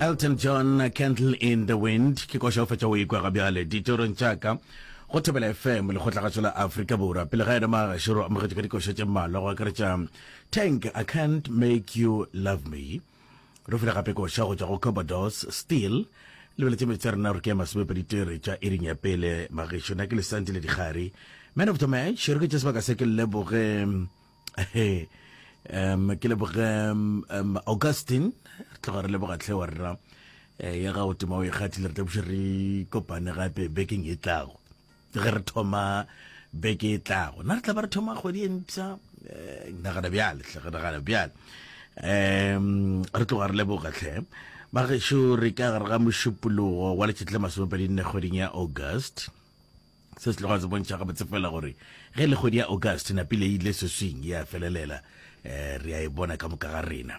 Elton John Candle in the Wind ke koša o fetša o ikwa ga bjale ditorong tša ka go thobela fm lekgotlagatšo la afrika borwa pele ga yena magašoro amogetše ka dikoša tše mmalwa go akaretša tank i can't make you love me re fula gape koša go tšwa go cobodos steel lebeletše metsi a rena gore ke ya masomepedi tere tša iring ya pele magešo na ke lesanti le dikgari man of the match re ke tše sebaka se ke leboge um ke leboge um augustin re tloga re leboga tlhe wa rra eh, ya gago tema o e kgathile re tlabuše re kopane gape bekeng e tlago ke ge re thoma beke e tlago na re tla ba re thoma kgwedi e mpsha eh, nagana bjale tlhe nagana bjale um re tloga re leboga tlhe bagešo re ka gare ga mošupologo wa letšetle masomepedi nne kgweding ya august se se tloga se bontšha gabotse fela gore ge le kgwedi ya august napile e ile seswing ya felelela um re a e bona ka moka ga rena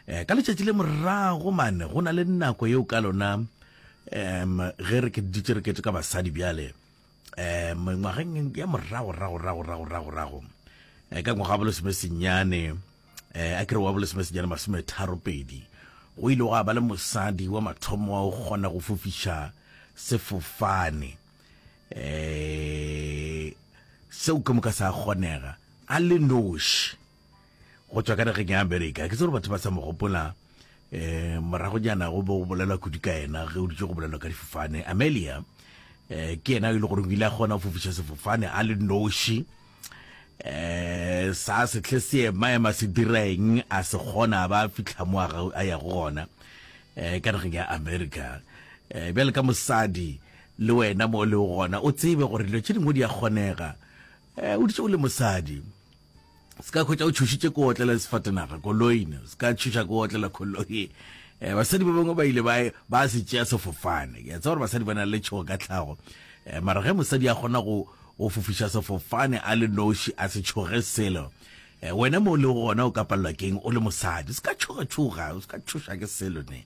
um ka letšatši le morago mane go na le nako yeo ka lona um ge re dutse re ketse ka basadi bjale um ngwageng ya moragoragoragoragoragorago um ka ngwaga bolo seme senyane um a kere wa bolesomesejana masome tharo pedi go ile go a ba le mosadi wa mathomo wa go kgona go fofiša sefofane um seo ke moka sa kgonega a le noši go tswa ka nageng ya amerika ke tse gore batho ba sa mo gopola um morago jana go bo go bolelwa kudu ka ena ge o ditse go bolelwa ka difofane amelia um ke ena e le gore o ile a kgona go fofiša sefofane a le noši um sa setlhe se emaema se direng a se kgona a ba fitlha mo a ya go gona um ka nageng ya america um bjale ka mosadi le wena mo le gona o tsebe gore dilo tše dingwe di a kgonega um o ditse o le mosadi se ka hwetša o tšhošitše ko otlela le sefatenaga koloine se ka tšhoša ko otlela koloi um basadi ba bangwe ba ile ba se tšea sefofane ke tsa gore basadi ba na le tšhogo ka tlhago um mara ge mosadi a kgona go go fofiša sefofane a le noši a se tšhoge selo um wena mo le gona o ka palelwa keng o le mosadi se ka tšhogatšhoga o se ka tšhoša ke selo ne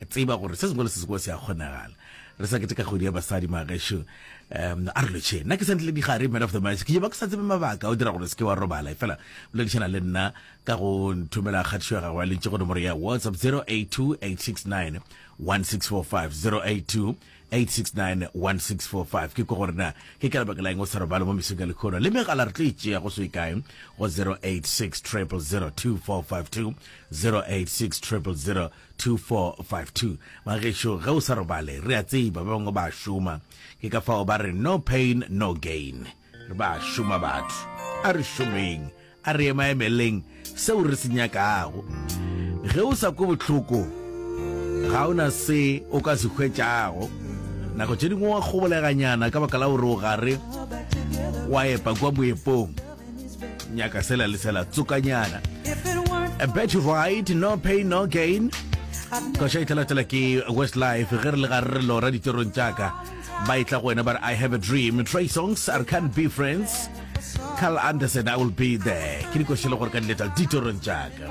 tseba gore se sengwe le se sengwe se a kgonagala re sa keteka kgwedi ya basadi magesho um a re lotšhe nna ke sa ntle digare man of the match ke jeba ke sa tsebe mabaka o dira gore se ke wa robala efela boledišana le nna ka go nthomela kgatišo ya gago ya lentše go nomoro ya whatsapp 082 869 1645 082 8691645 ke ko gore na ke ka lebaka la eng o sa robale mo mesong ya lekgono le megala re tlo e tšea go se kae go 0860002452 0860002452 magešo ge o sa robale re a tseba ba bangwe ba šoma ke ka fao ba re no pain no gain Re ba šoma batho, a re šomeng, a re emaemeleng seo re se nyakago. Ge o sa kwe bohloko, ga o na se o ka se hwetšago. Nako tše dingwe wa kgoboleganyana ka baka la gore o gare wa epa kwa boepong. Nyaka sela le sela, tsokanyana. A bet you right, no pain, no gain. Koša e tlalatela ke Westlife ge re le gare re lora ditšorong tša ka. ba etla go wena ba re i have a dream try songs i can't be friends carl anderson i will be there ke dikošele gore ka diletla ditorong tšaka